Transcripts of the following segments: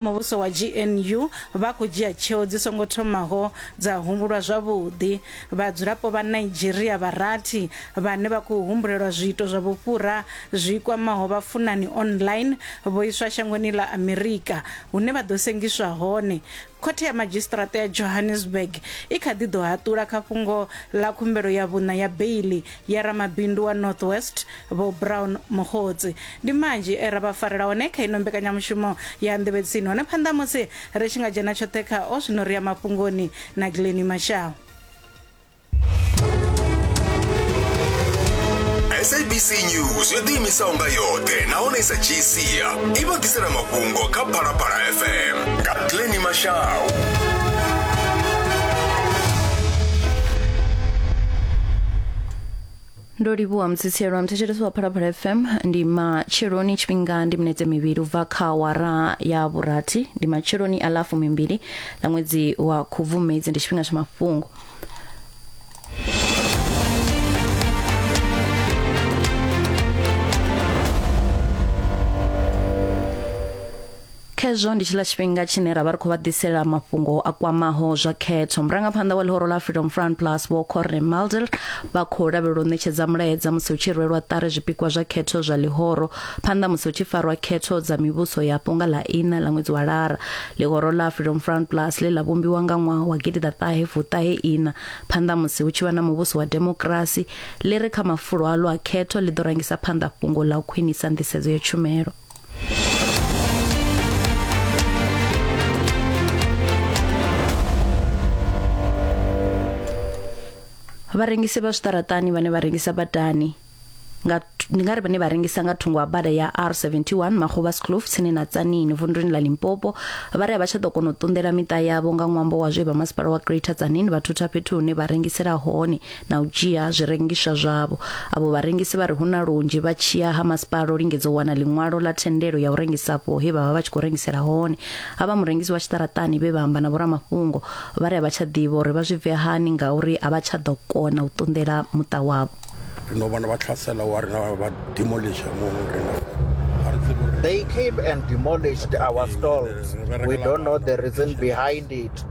muvhuso wa GNU vha khou dzhia tsheo dzi songo thomaho dza humbulwa zwavhuḓi. Vhadzulapo vha Nigeria vha rathi vhane vha khou humbulelwa zwiito zwa vhufhura zwi kwamaho vhafunani online vho iswa shangoni ḽa Amerika hune vha ḓo sengiswa hone. Khothe ya Madzhisiṱiraṱa ya Johannesburg i kha ḓi ḓo haṱula kha fhungo ḽa khumbelo ya vhuṋa ya beiḽi ya ramabindu wa north west vho brown muhotsi ndi manzhi e ra vha farela hone kha ino mbekanyamushumo ya nḓevhetsini hone phanḓa musi ri tshi nga dzhena tshoṱhe kha o zwino ri ya mafhungoni na gleni mashao sabc news yo ḓiimisaho nga yoṱhe nahone i sa dzhii sia i vha ḓisela mafhungo kha phalaphala fm nga gleni mashau ndo livhuwa mutsitshelo wa muthetshelesi wa phalaphala fm ndi matsheloni tshifhinga ndi minetse mivhili ubva kha wara ya vhurathi ndi matsheloni a lafu mimbili na ṅwedzi wa khubvumedzi ndi tshifhinga tsha mafhungo Khezwo ndi tshiḽa tshifhinga tshine ra vha ri khou vha ḓisela mafhungo a kwamaho zwa khetho. Murangaphanḓa wa ḽihoro ḽa Freedom Front Plus Vho Corne Mulder vha khou lavhelelwa u ṋetshedza mulaedza musi hu tshi rwelwa ṱari zwipikwa zwa khetho zwa ḽihoro phanḓa musi hu tshi farwa khetho dza mivhuso yapo nga ḽa iṋa ḽa ṅwedzi wa Lara. Ḽihoro ḽa Freedom Front Plus ḽe ḽa vhumbiwa nga ṅwaha wa gidi ḓa ṱahe fuṱahe iṋa phanḓa musi hu tshi vha na muvhuso wa demokirasi ḽi ri kha mafulo a ḽo a khetho ḽi ḓo rangisa phanḓa fhungo ḽa u khwinisa nḓisedzo ya tshumelo. vharengisi vha zwiṱaraṱani vhane vha rengisa badani nga ndi nga ri vhane vha rengisa nga thungo ha bada ya R71 Magobaskloof tsini na Tsanini vunduni ḽa Limpopo vha ri a vha tsha ḓo kona u ṱunḓela miṱa yavho nga ṅwambo wa zwe vha masipala wa Greater Tsanini vha thutha fhethu hune vha rengisela hone na u dzhia zwirengiswa zwavho avho vharengisi vha ri hu na lunzhi vha tshiya ha masipala u lingedza u wana ḽiṅwalo ḽa thendelo ya u rengisa afho he vha vha vha tshi khou rengisela hone havha murengisi wa tshiṱaraṱani vhe vha amba na vhoramafhungo vha ri a vha tsha ḓivha uri vha zwi bve hani ngauri a vha tsha ḓo kona u ṱunḓela muṱa wavho ri no vhona vha tlhasela wa rina vha demolisha mu rina They came and demolished our stalls. We don't know the reason behind it.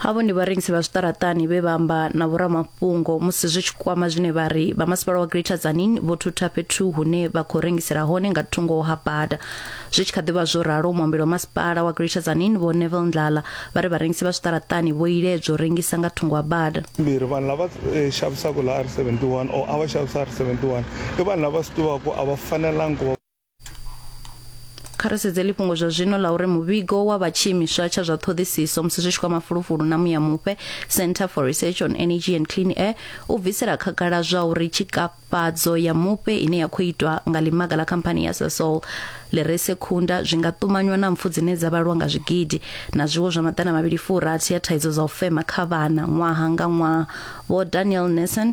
havho ndi vharengisi vha zwiṱaraṱani vhe vha amba na vhoramafhungo musi zwi tshi kwama zwine vha ri vha masipala wa greater zanin vho thutha fhethu hune vha khou rengisela hone nga thungo ha bada zwi tshi kha ḓivha zwo ralo muambeli wa masipala wa greater zanin vho nevel ndlala vha ri vharengisi vha zwiṱaraṱani vho iledzwa u rengisa nga thungo ha bada mbirhi vanhu lava eh, xavisaka laha r71 or a va xavisa r71 i vanhu lava swi tivaka ku a va fanelangi ku va kha ri sedze ḽifhungo zwa zwino ḽa uri muvhigo wa vha tshiimiswa tsha zwa ṱhoḓisiso musi zwi tshi kwama fulufulu na muya mupe center for research on energy and clean air u bvisela khagala zwa uri tshikafhadzo ya mupe ine ya khou itwa nga ḽimaga ḽa khamphani ya sasol ḽi re sekhunda zwi nga ṱumanywa na mpfu dzine dza vhalwa nga zwigidi na zwiwo zwa maḓana mavhili furathi ya thaidzo dza u fema kha vhana ṅwaha nga ṅwaha vho daniel nelson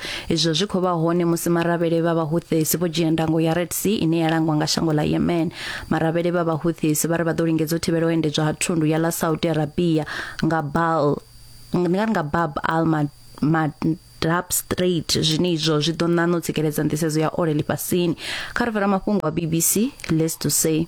Izwo zwi khou vha hone musi maravhele vha Vhahuthis vho dzhia ndango ya Red Sea ine ya langwa nga shango ḽa Yemen. Maravhele vha Vhahuthis vha ri vha ḓo lingedza u thivhela u endedzwa ha thundu ya ḽa Saudi Arabia nga Bal nga nga Bab al Mandab Strait zwine izwo zwi ḓo ṋaṋa u tsikeledza nḓisedzo ya ole ḽifhasini. Kha ri fara mafhungo a BBC Let's to say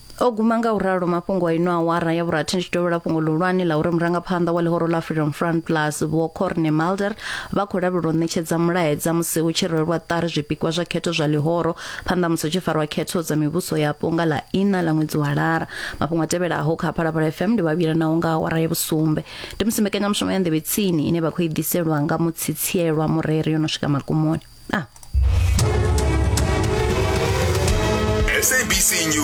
o guma nga u ralo mafhungo a ino awara ya vhurathi ndi tshi dovhela fhungo ḽihulwane ḽa uri murangaphanḓa wa ḽihoro ḽa freedom front plus vho corne malder vha khou lavhelelwa u ṋetshedza mulaedza musi hu tshi rwelwa ṱari zwipikwa zwa khetho zwa ḽihoro phanḓa musi hu tshi farwa khetho dza mivhuso yapo nga ḽa ina ḽa ṅwedzi wa lara mafhungo a tevhelaho kha phalaphala fm ndi vhavhila naho nga awara ya vhusumbe ndi musi mbekanyamushumo ya nḓevhe tsini ine vha khou i ḓiselwa nga mutsitsielwa mureri yo no swika magumoni ah. SABC News.